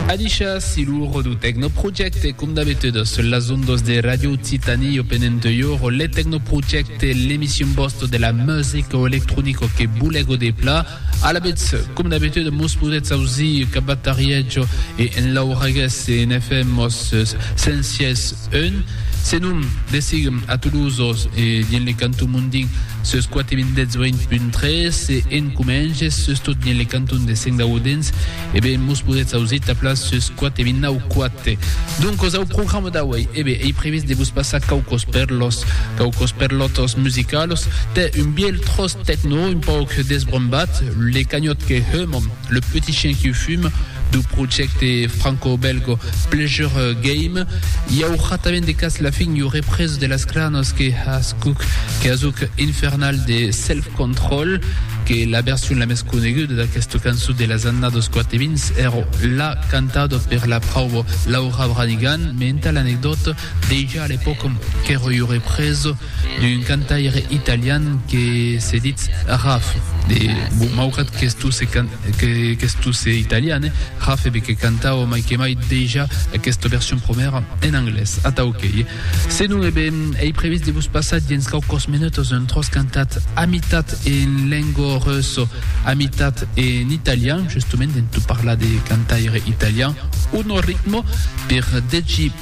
Adishas si lo Redu Tecno Projecte, com d'abitudas sul las ondas de Radio Occitanie Open Entoior, le Tecno Projecte, l'emission bosto de la musica electronica que boule goder pla. A la bits, com d'abitude, mos podetz ausir cap a Tarietjo e en l'Auragues e en FM mos sensies Un, se non, desiguem a Toulouse-Oz e dien le canton mondin sus 4.018.3 se en comenges sus tot dien le canton de Sengaudenç, e ben mos podetz ausit taplar sus 4.009.4. Doncos au programa d'auei, e ben ei previst de vos passar quaucos perlos, quaucos perlotos musicalos, tè un bielh tros tecno un pauc desbrombat, le canhòt que heuman. Le petit chien qui fume du projècte franco-bèlgo Pleasure Game. I aurà tanben de cas la fin iu represa de las cranos que ascuc que asuc infernal de Self Control, que la version la mès coneguda d'aquesta cançon de las annados 80 èra la cantada per la prauba Laura Branigan, me entà l'anecdòta, Dejà a l'epòca qu'èra ua represa d'un cantaire italian que se ditz Raf, maugrat qu'estusse italian, Raf ebe que cantava mai que mai dejà aquesta version promèra en anglés. Atau qu'ei. Se non, ebe, ei previst de vos passar dens quauquas menutas un tròç cantat a mitat en lengua russa, a mitat en italian, justement en tot parlar de cantaire italian, un ritme per 10.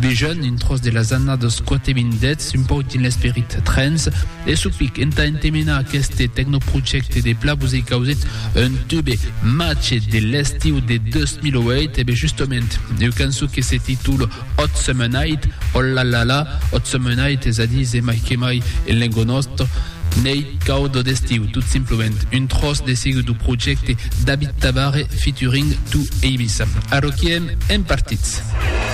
Vegen un tròç de las annadas quate vint dets un pauc dins l'esperit trens e supic entà entemenar aqueste tecnoprojècte de Plavus e Causits un tube machet de l'estiu de 2008 e be justement ua cançon que se titula Hot Summer Night o la la la Hot Summer Night es a dir se mai que mai en lenga nòsta Neit cauda d'estiu tot simplement un tròç de siga du projècte David Tabarre featuring Too Ibiza arroquiem en partits.